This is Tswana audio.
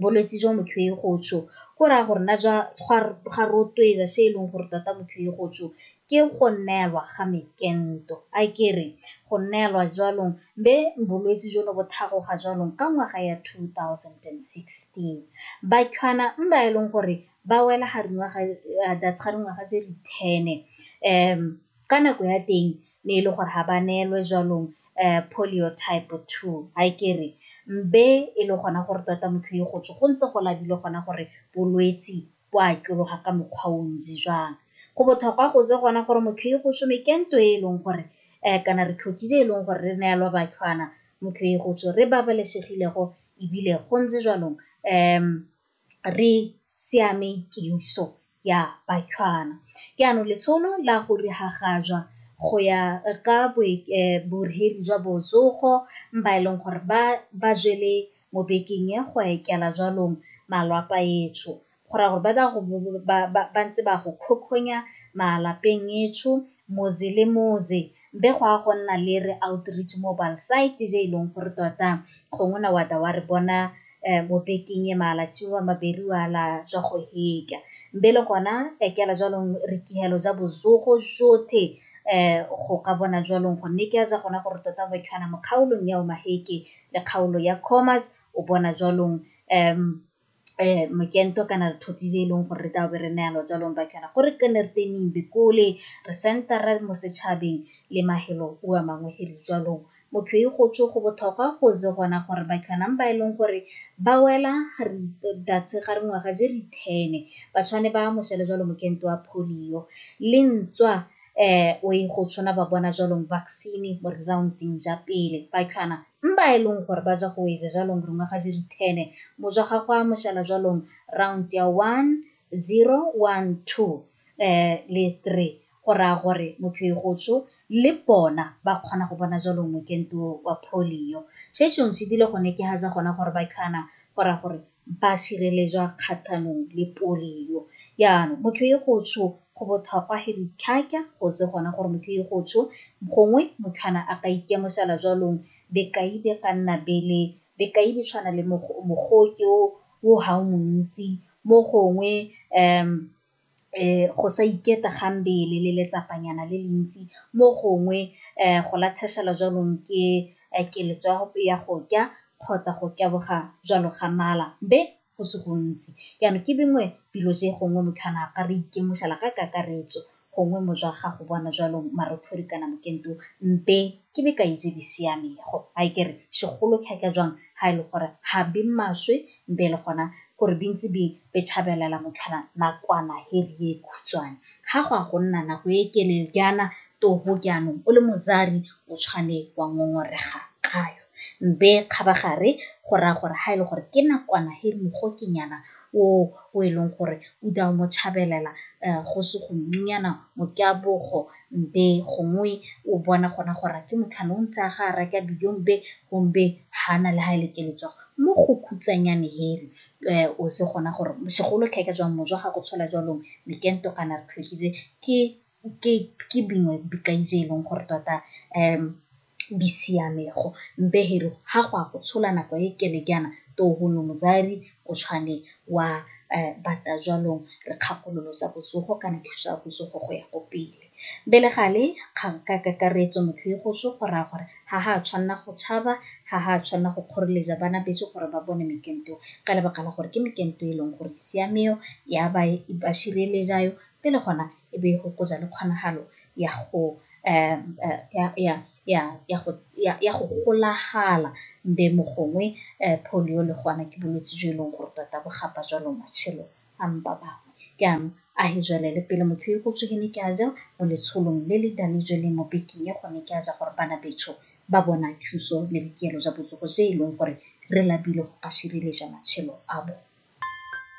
bolwetse jwa motho e go tjho go raya gore na jwa ga rotloetsa se e leng gore tota motho e go tjho ke go neelwa ga mekento a kere go neelwa jwalong be bolwetse jo no bo thagoga jwalong ka ngwaga ya 2016 bakhwana mba e leng gore ba wela ga dingwaga tse di ten um ka nako ya teng ne e le gore ga ba neelwe jwanong um polio type two ga e kere mbe e le gona gore tota motho e go tswe go ntse go labile gona gore bolwetsi bo a tloga ka mokgwa o ntsi jwang go botlhokwa go je gona gore motho e go some ke nto e e leng gore um kana re tlhokile e leng gore re neelwa batlhwana motho e go tswe re babalesegilego ebile go ntse jwanong um re siame kemiso ya Batlhwana. Jaanong letsholo la go diragatsa go ya ka borhedi jwa botsogo ba e leng gore ba jele mo bekeng e go etela jwalong malwapa etsho go raya gore ba ntse ba go kgokgonya malapeng etsho Motse le motse be go a go nna le re outreach mobile site je e leng gore tota gongwe na wa ta wa re bona um mo bekeng e malatsi wa maberi wa la jwa go heka be le gona ekela jwalong re kihelo ja bozogo jothe um go ka bona jwalong go nne ke a ja gona gore tota go khana mo kgaolong ya o maheke le kgaolo ya commerce o bona jwalong um mokento kana re thothi tse e leng gore re tlabe re neya lojalong ba kana gore ke ne re tening bikole re sentara mo setšhabeng le mahelo o a mangwe hiri jalong motho e go tswe go botlhokwa go ze gona gore ba kanang ba e leng gore ba wela re datse ga re ngwaga je re thene ba tshwane ba mosele jalo mokento wa polio le ntswa um o e go tshwana ba bona jalong vaccine mo re rounding ja pele ba kana M ba e leng gore ba ja go weze jalong rongwa ga jiri thene mo jwa ga gwa mošala jwalong round ya one, zero, one, two, eh, le three go raya gore motho e go tsho le bona ba kgona go bona jalo mokento wa polio se sengwe se dile gone ke ga ja gona gore ba khana go raya gore ba sireletswa kgatlhanong le polio. Jaanong motho e go tsho go botlhokwa he ditlhaka go se gona gore motho e go tsho gongwe motho ana a ka ikemosela jwalong bekai be ka nna bele bekai be tshwana le mogoke o ga o montsi mo gongwe . go sa iketa ga mmele le letsapanyana le le ntsi mo gongwe go latlhegelwa jaanong ke keletso ya go ja kgotsa go taboga jalo ga mala be go se gontsi jaanong ke bengwe dilo tse gongwe motho a na a ka re itemogela ka kakaretso gongwe mo jwa gago bona jalo marothodi kana mokento mpe ke be ka itse di siamego a e kere segolo thata jang ha e le gore ga be maswe Mpe e le gona gore di ntse di petshabelela motlhala nakwana he ri e khutshwane. Ha go a go nna nako e kelel jaana toho jaanong o le mozari o tshwane wa ngongorega kayo. Mpe kgabagare go raya gore ha e le gore ke nakwana he ri mogokenyana o o e leng gore o da o mo tshabelela go se go nnyana mokabogo Mbe gongwe o bona gona gore ke motho ane o ntse a ga a reka dijo mbe gombe ha na le ha e le ke letswa mo go khutsanyane here o se gona gore segolo tlhe ka jwang mojwa ga go tshola jwalong mekento kana re tlhotlhile ke ke ke bingwe bikaise e leng gore tota . bisiamego mpeheri ha gwa go tshola nako e kele kana to go no mozari o tshwane wa um bata jwanong re kgakololo tsa botsogo kana thuso ya botsogo go ya ko pele bele gale kgang ka kakaretso motho e go so go raya gore ga ga tshwanela go tshaba ga ga tshwanela go kgoreletsa bana beso gore ba bone mekento ka lebaka la gore ke mekento e leng gore siameo ya ba e ba šireletsayo pele gona e be e gokotsa le kgonagalo ya go ya go golagala be mo gongwe polio le go ana ke bolwetse jo e leng gore tota bo gapa jalo matshelo a mpa bangwe. Jaanong a he jwalele pele motho e go tsogene ke a ja mo letsholong le le dale jo le mo bekeng ya gone ke a ja gore bana betsho ba bona thuso le boikuelo jwa botsogo se e leng gore re lapile go ka sireletsa matshelo a bone.